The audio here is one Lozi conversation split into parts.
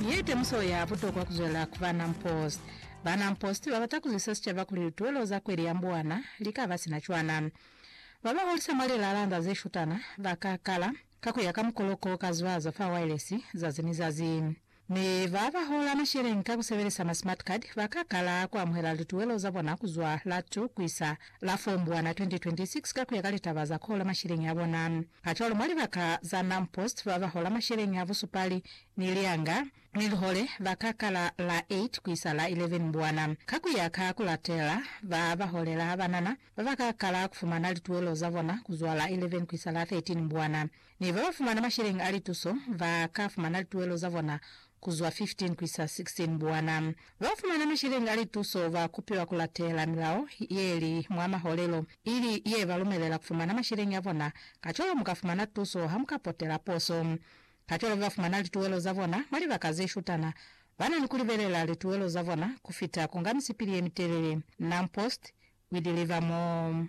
Ye temuso ya butokwa kuzwelela kuba non-post. Ba non-post babata kuzwisa sicaba kuli lituwelo za kweli ya mbuwana likaba sina cwana. Babaholisa mwa lilaalanga zeshutana baka kala ka kuya ka mukoloko ka zwazo fa wailesi zazi ni zazi. Mi babahola masheleni ka kusebelisa ma smart card baka kala kuamuhela lituwelo zabona kuzwa la 2 kuisa la Fombwana 2026 ka ku ya ka litaba za ku hola masheleñi a bona. Kacwalo, mwa libaka za Nampost ba ba hola masheleñi a busupali ni lianga ni lihole ba ka kala la 8 ku isa la 11 Mbwana. Ka ku ya ka ku latela, ba ba holela ha banana ba ba ka kala ku fumana lituwelo za bona ku zwa la 11 ku isa la 13 Mbwana. Ne ba ba fumana masheleñi a lituso ba ka fumana lituelo za bona ku zwa 15 ku isa 16 buwana. Ba ba fumana masheleñi a lituso ba kupiwa ku latela milao ye li mwa maholelo, ili ye ba lumelela ku fumana masheleñi a bona. Kacwalo mu ka fumana tuso ha mu ka potela poso. Kacwalo ba ba fumana lituelo za bona mwa libaka ze shutana ba na ni ku libelela lituelo za bona ku fita ku nga misipili ye mitelele. Nampost, We Deliver More.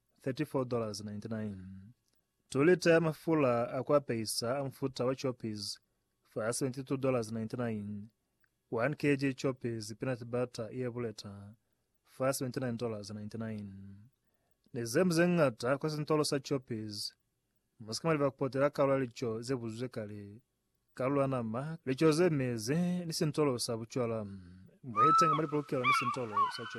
34.99 2 lita ya mafula a ku apeisa a mufuta wa choppies fa 72.99 1 kg choppies peanut butter ye buleta fa 79.99 Ni zemu ze ñata kwa sintolo sa choppies Mu si ka mwa leba ku potela kalulo ya lico ze buzuzwe kale, kalulo ya nama, lico ze mezi, ni sintolo sa bucwala. Mu itenga mwa lipolokelo ni sintolo sa choppies.